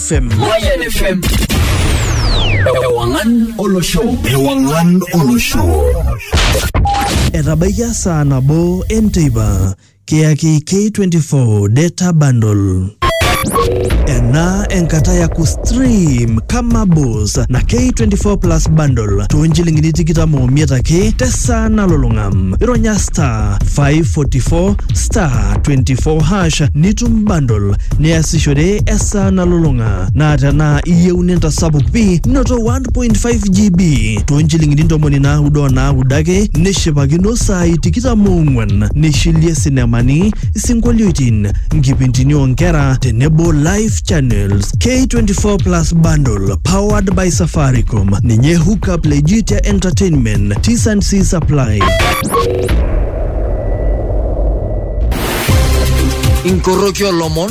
FM. Moyen FM. Ewangan Olo Show. Ewangan Olo Show. Etabaikia saa nabo enteipa kiyaki K24 Data Bundle. Ena enkata ya kustream kama bos na K24 Plus Bundle too nchilingini tikitam omiet ake tesaa nalulung'a. Ironya star 544 star 24 hash nitum bundle niasishore esaa esaa nalulung'a naa tenaa iyieu nintasapuk pii noto 1.5 GB too nchilingini ntomoni naaudo o naaudo ake nishipakino saai tikitam oong'wan nishilie sinemani, isinkolioitin, nkipintini oo nkera tenebo live channels. K24+ bundle powered by Safaricom ninye hookup le Jitia Entertainment. T's and C's apply. inkoroki olomon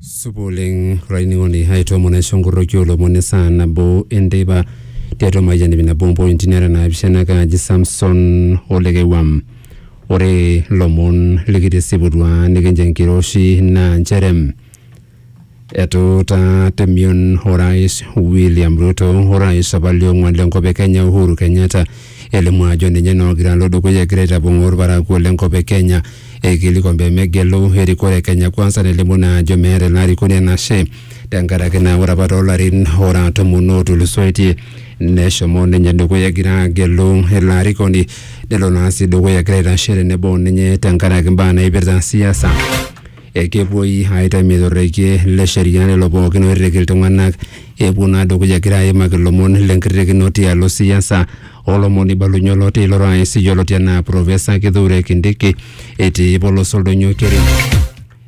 supa oleng olainining'oni aitoomon aisho nkorroki olomon esaa nabo enteipa tiatua mayian ip nabo ompointi nara naapishana kaaji Samson olekewam ore ilomon likitisiputua nikincho enkiroshi naa nchere etuutaa temion orais William Ruto orais apa liong'uan lenkop e Kenya Uhuru Kenyatta elimu ajo ninye naa olgiran lo dukuya egira aitapong'oo olparakuo le nkop e Kenya eikilikuan pee megelu erikore e Kenya Kwanza nelimu naa ajo meeta ina arikoni enashe tenkaraki naa ore apa too larin ora tomon ootulusoitie neshomo ninye dukuya egira agelu ilo arikoni nelo naa sii dukuya egira aitashe tenebo o ninye tenkaraki imbaa naipirta siasa. Ekepuoi aitam etorreikie le sheria lelo pookin oirrik iltung'ana epuo naa dukuya egira aimaki lomon le nkirrikino tialo siasa o lomon oibalunye oloti ilo rais yioloti anaa Professor Kithure Kindiki etii polos oldonyo Keri.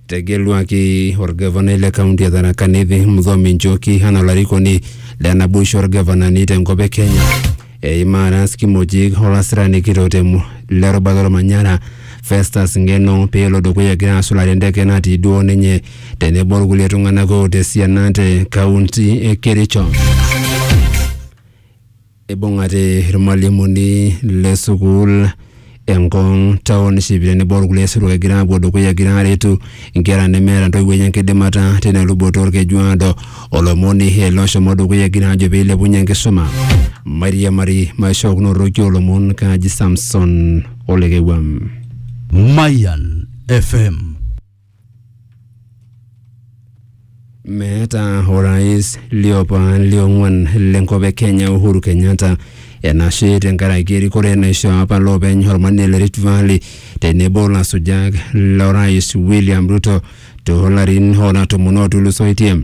Etegeluaki olgavanai le kaunti e Tharaka Nithi Muthomi Njoki anaa olarikoni le naboisho olgavanani te nkop e Kenya. Eimaa Ras Kimojik o lasirani kitok te le rubata olmanyara Festus Ngeno pee elo dukuya egira asulare enteke natii duo ninye tenebo olkulie tung'anak oota esiana te kaunti e Kericho. Eibung'ate ilmalimuni le sukuul Engong, township tenebo olkulie sirua egira apuo dukuya egira aretu nkera nemeeta ntoiwuo enye enkidimata tina luboto olkeju aado. Olomoni ele oshomo dukuya egira ajo pee eilepunye enkisuma. Mairiamari maishookinoroki olomon kaaji Samson Olekewuam. Mayan FM. Meeta orais liopa liong'uan lenkop e Kenya Uhuru Kenyatta enashe tenkaraki erikore naishoo apa loopeny Olmanie le Rift Valley tenebo lasujak lorais William Ruto toolarin ora tomon ootulusoitie.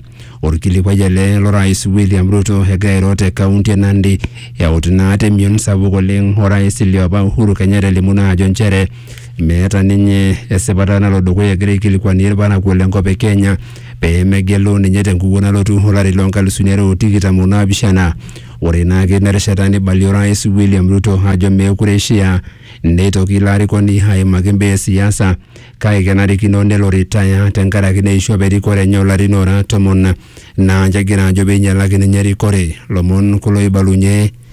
Olkilikuai ele lorais William Ruto egira airo te kaunti e Nandi eut naa temion sapuk oleng orais liopa Uhuru Kenyatta elimu naa ajo nchere meeta ninye esipata nalo dukuya egira aikilikuanie irparakuo lenkop e Kenya pee megelu ninye tenkukuo nalotu olari loo nkalusuni are o tikitam o naapishana. Ore ina ake ina rishata neibalie orais William Ruto ajo meekure eishiaa neitoki ilo arikoni aimaki imbaa e siasa kake kenarikino nelo retire tenkaraki neishu apa erikore enye o larin oora tomon naa ninche egira aajo pee einyalaki ninye erikore. Ilomon kulo oibalunye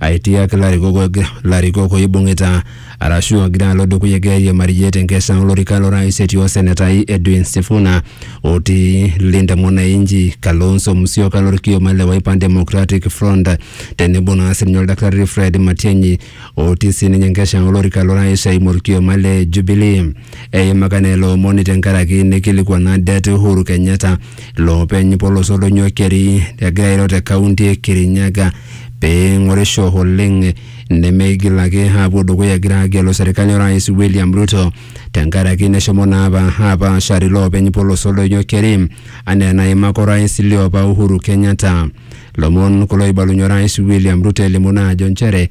aitiak ilarikok larikok oibung'ita arashu ogira alo dukuya egira airiamariyie tenkesha olorika lorais etii osenetai Edwin Sifuna otii Linda Mwananchi, Kalonzo Musyoka lorkioma le Wiper Democratic Front tenebo naa sininye oldakitari Fred Matiang'i otii sininye enkesha olorika lorais eimu orkioma le Jubilee. Eimaka naa ilo omoni tenkaraki neikilikuana det Uhuru Kenyatta loopeny polos oldonyo keri egira airo te kaunti e Kirinyaga pee eing'orisho oleng nemeigil ake aapuo dukuya egira aagelu serkali orais William Ruto tenkaraki neshomo naa apa apaashare iloopeny polos oldonyo keri anaa enaimaka orais liopa Uhuru Kenyatta. Lomon kulo oibalunye orais William Ruto elimu naa ajo nchere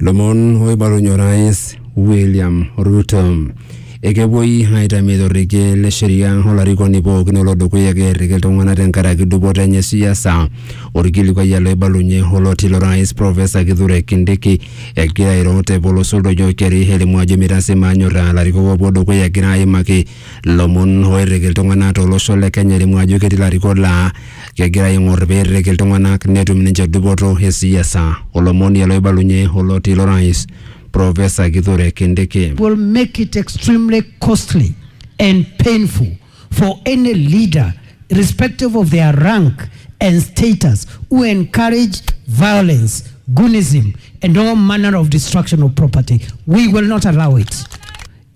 Lomon oibalunye orais William Ruto. Ekepuoi aitamie torrekie le sheria olarikoni pookin olo dukuya kerriki iltung'anak tenkaraki dupoto enye siasa. Orkilikuai ele oibalunye oloti lo rais Professor Kithure Kindiki egira airo te polos oldoiyo keri elimu ajo meitasi manyorra ilarikok opuo dukuya egira aimaki Lomon oirriki iltung'anak to losho le Kenya elimu ajo ketii ilarikok laa kegira aing'or peirrik iltung'anak netum ninche dupoto e siasa. Olomoni ele oibalunye oloti lo rais Professor Kithure Kindiki. will make it extremely costly and painful for any leader irrespective of their rank and status who encourage violence, goonism and all manner of destruction of property. We will not allow it.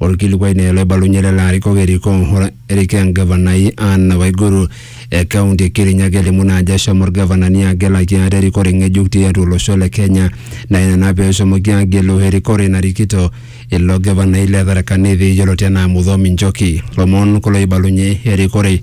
Olkilikuai naa ele oibalunye lelo arikok erikoo erikoo engavanai Anne Waiguru e kaunti e Kirinyaga elimu naa ajo eshomo olgavanani agelaki ate erikore ng'ejuk tiatua olosho le Kenya naa ina naa peeshomoki aagelu erikore narikito ilo gavanai le Tharaka Nithi yioloti anaa Muthomi Njoki. Lomon kulo oibalunye erikore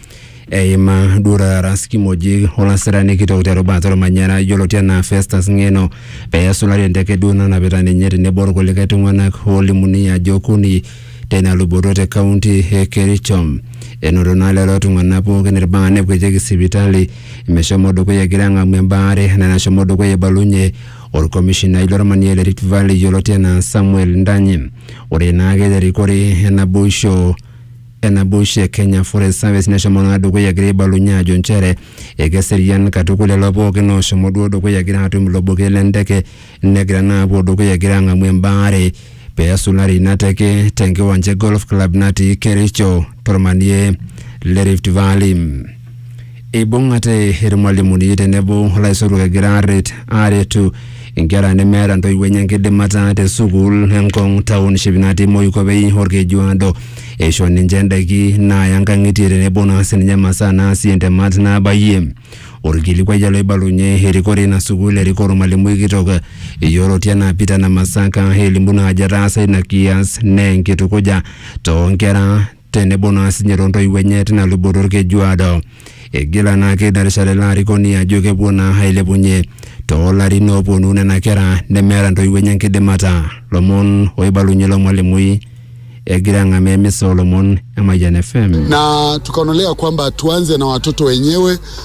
eima Dura Ras Kimoji olasirani kitok terubata olmanyara yioloti anaa Festus Ng'eno pee esulari enteke duo nanapita ninye tenebo olkulikae tung'anak oolimuni ajo okuni teina luboto te kaunti e Kericho. Enoto naa lelo tung'anak pookin ilbaa nekuetieki sipitali meshomo dukuya egira ang'amu embaare enaa enashomo dukuya eibalunye olkomishinai lolmanie le Rift Valley yioloti anaa Samuel Ndanyi. Ore naake te rikore e naboisho enaboisho e Kenya Forest Service neshomo naa dukuya egira aibalunye ajo nchere ekeserian katukul lelo pookin ooshomo duo dukuya egira aatum ilo buket le ndeke negira naa apuo dukuya egira ang'amu embaare pee esulari ina teke tenkiwanja e Golf Club natii Kericho tormanie le Rift Valley. Eibung'ate irmalimuni tenebo olaisotuak egira aaret aaretu inkera nemeeta ntoiwuo enye enkidimata te sukuul e Ngong township natii Moikopei Olkejuado. Eisho ninche ndaiki naaya nkang'itie tenebo naa sininye masaa naasie ntemat naabayie. Olkilikuai ele oibalunye erikore ina sukuul erikoo olmalimui kitok yioloti anaa Peter Namasaka elimu naa ajo etaasa ina kias naa enkitukuja too nkera tenebo naa sinye toontoiwuo enye tina luboto olkejuado. Eigila naake ina rishata ele arikoni ajo kepuo naa ailepunye toolarin ooponu nena kera nemeeta ntoiwuo enye enkidimata. Lomon oibalunye ilo mwalimui egira ang'amaa emisa oolomon e Mayian FM. na tukaonelea kwamba tuanze na watoto wenyewe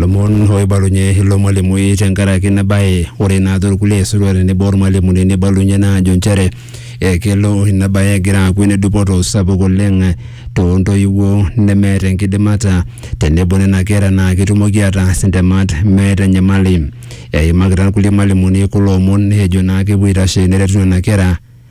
Lomon oibalunye ilo mwalimui tenkaraki ina bae. Ore naa torkulie aisotuak tenebo ormwalimuni neibalunye naa ajo nchere ekelo ina bae egira aaku ene dupoto sapuk oleng too ntoiwuo nemeeta enkidimata tenebo nena kera naa ketumoki ataas intemat meeta enyamali. Eimakita irkulie mwalimuni kulo omon ejo naa kepuo aitashe neretu nena kera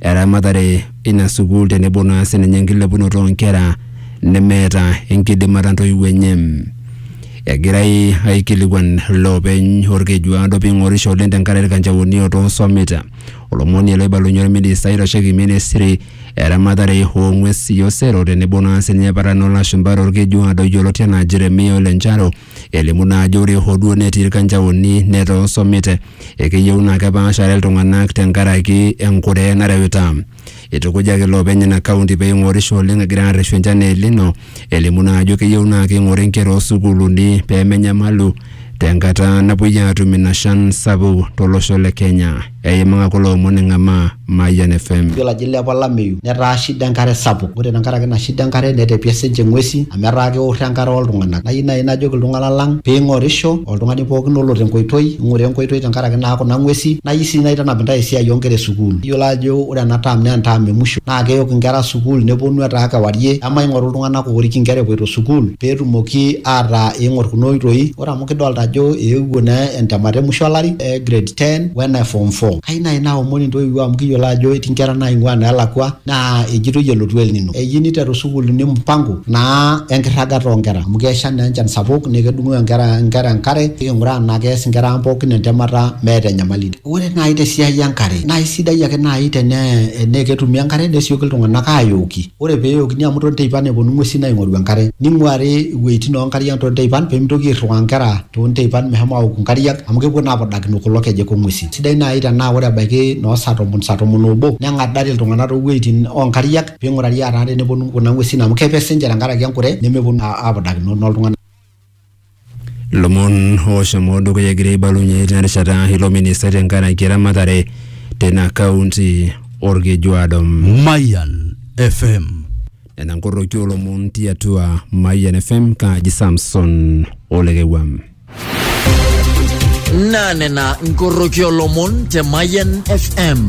eramatare ina sukuul tenebo naa sininye enkilepunoto oonkera nemeeta enkidimata ntoiwuo enye. Egirai aikilikuan loopeny Olkejuado ping'orisho oleng tenkaraki ilkanjaoni otoosomita. Olomoni ele oibalunye olministai oitasheki ministry eramatare oo ng'wesi osero tenebo naa sininye paran oo lashumpa tolkejuado yioloti anaa Jeremia Ole Ncharo Elimu naa ajo ore hoo duo netii ilkanjaoni netaa osomit, ekeyieu naa kepaashare iltung'anak tenkaraki enkure nareuta. Eitukujaki iloopeny ina kaunti pee eing'orisho oleng egira aarreshu enchan e El Nino, elimu naa ajo keyieu naa keing'ori inkera oo sukuuluni pee menyamalu tenkata napuoi aatum ina shan sapuk tolosho le Kenya. Eimaka kulo omon eng'amaa Mayian FM. Yiolo ajo eilepa olameyu netaa shida enkare sapuk. Ore tenkaraki ina shida enkare netepie sii ninche ng'uesi amu etaa keorro enkare ooltung'anak. Nayieu naai najoki iltung'anak lang pee ing'orisho oltung'ani pooki olo tenkoitoi, ing'ura enkoitoi tenkaraki naa kuna ng'uesi. Nayieu sii naitanap intae esiai oo nkera e sukuul. Iyiolo ajo ore ena term naa entaam e musho naa keyok inkera sukuul nepwonu etaa kewarie. Emaing'oru iltung'anak oorik inkera epoito sukuul peetumoki ataa eing'orr kuna oitoi Ore amu kidolta ajo eewuo naa entemata e musho olari e grade ten we ene form four, kayeu nai naomon intoiwuo amu kiyolo ajo eti nkera naing'ua neelakua naa ejitoi elotu El nino, eyeu niteru sukuulini mpango naa enkirragata o nkera amu kesha naa enchan sapuk nee kedung'oo enkera nkera enkare, keking'uraa naa kees nkera ang' pookin entemata meeta enyamali. Ore nai te siai e nkare nae sidai ake nai tenee enee ketumi enkare nesioki iltung'anak ayooki. Ore pee eokini amu too nteipan epuonu ing'uesin aing'oru enkare. Neing'uari iwuejitin oo nkariak too nteipan pee meitoki airriwaa inkera too nteipan meshomo aaoku inkariak amu kepuo naa apudakino kulo kejek oo ng'uesin. Sidai naaji tenaa ore ebaiki noo saa tomon, saa tomon oobo neng'adari iltung'anak too wuejitin oo nkariak pee eing'urari aataa tenepuonu kuna ng'uesin amu kepe sii ninche tenkaraki enkure nemepuonu naa apudakino noo iltung'anak. Lomon ooshomo dukuya egira aibalunye tina rishata ilo ministai tenkaraki eramatare tina kaunti Olkejuado. Mayan FM. Nena nkoroki oolomon tiatua Mayian FM kaaji Samson Olekewam. Naa nena nkoroki oolomon te Mayan FM.